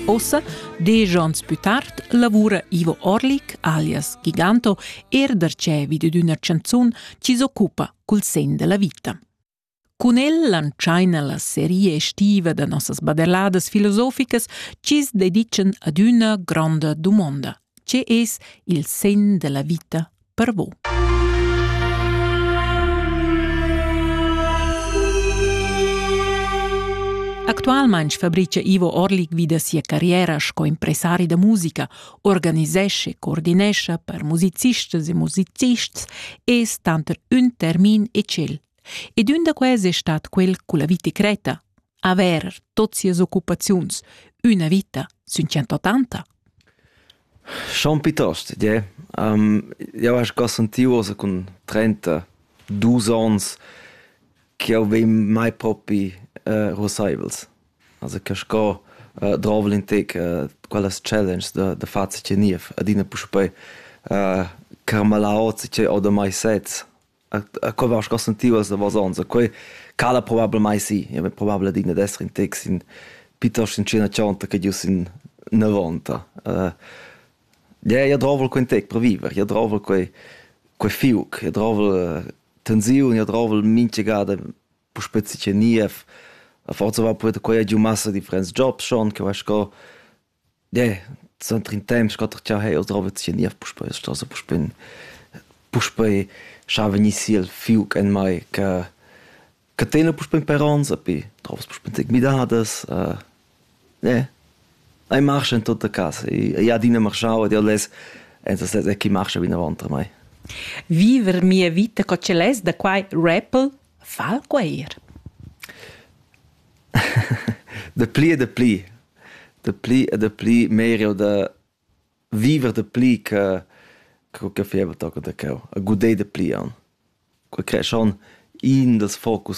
Ossa, desch onns pü tard, lavura Ivo Orlik, alias Giganto, er darcheu vid d'üna chanzun chi s'occupa cul sen della vita. Cun el lantschaina la seria estiva da nossas baderladas filosoficas chi's dedican ad üna gronda dumonda – Tge es il segn da la vita per vo? Actualmain fabricia Ivo Orlik vi da sia carriera sco impresari da musica, organisesce, coordinescha per musicistas e musicists e es tanter ün termin e tschel. Ed ün da quels è stat quel culla vita creta, Haver tot sias occupaziuns üna vita sün 180? Schon piuttost, yeah. Um, eu asch già sentì uossa cun 32 ans che eu vegn mai propi uh, rosaivels. Also che sco uh, drovel in te uh, quellas challenge da, da far ce niev adina puspei uh, carmalaot ce o da mai sets a co vas consentivas da vasonza quei cala probablmai sì ja vegn probabel digna d'esser in tex in piuttosto in cena chonta che gius in 90 uh, ja ja drovel quei tec per viver ja drovel quei quei fiuc ja drovel tensiun ja drovel minchegada po spezi che nie a forza va poeta quei giu massa differents jobs schon che va sco Ne, suenter in temps quatter cha hei oz drova sia niev puspei a chasa puspei puspei scha vegnissi el fiuc en mai che che tena puspei in parents api drovas puspei tig midadas ne ei marscha in tutta casa ei adina marschau ed jeu less enza sez e chi marscha vinavant a mei. Viver mia vita co ce less da quai rappel Fa'l gueir. Dapli e dapli, dapli e dapli meir eau da viver dapli che co che faiva toca da cheu, a gudé dapli aunc. Quai creeschan iin dals focus